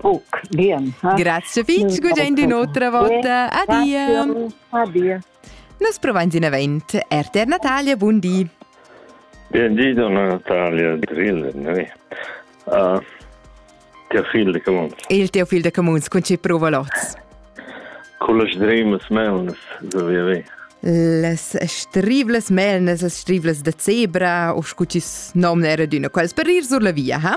Buc, bien. Grazie fitg, gudain di un'otra volta. Adia. Adia. Nos provain in event. RTR Natalia, buon di. Buon di, donna Natalia Drillen. noi. Uh, teo fil de Camuns. Il teo fil de Camuns, con ci prova lots? Con las dremes melnes, so via via. Les strivles melnes, les strivles de zebra, o scu ci nom era d'una quals per ir sur la via, ha?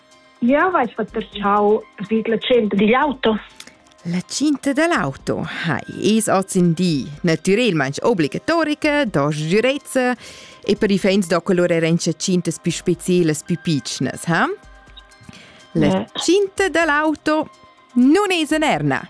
Jau hai fatg vid la tschenta digl auto. La cinta dell'auto ha es ozindi natürelmaing obligatorica da sgürezza e per i fans da colur era in cintas più specielas, più piccnas, ha? La cinta dell'auto non es anerna.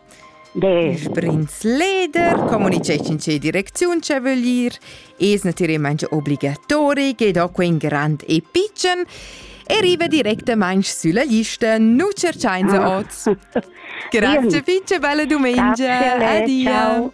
Il prinz leder communiceschin che direcziun che vögl ir es natüralmaing obligatori che do quel grand e pitschen e riva directamaing sülla lista, nu cerchainsa oz. Grazie, fece bella domenica. Grazie, Adia. Ciao.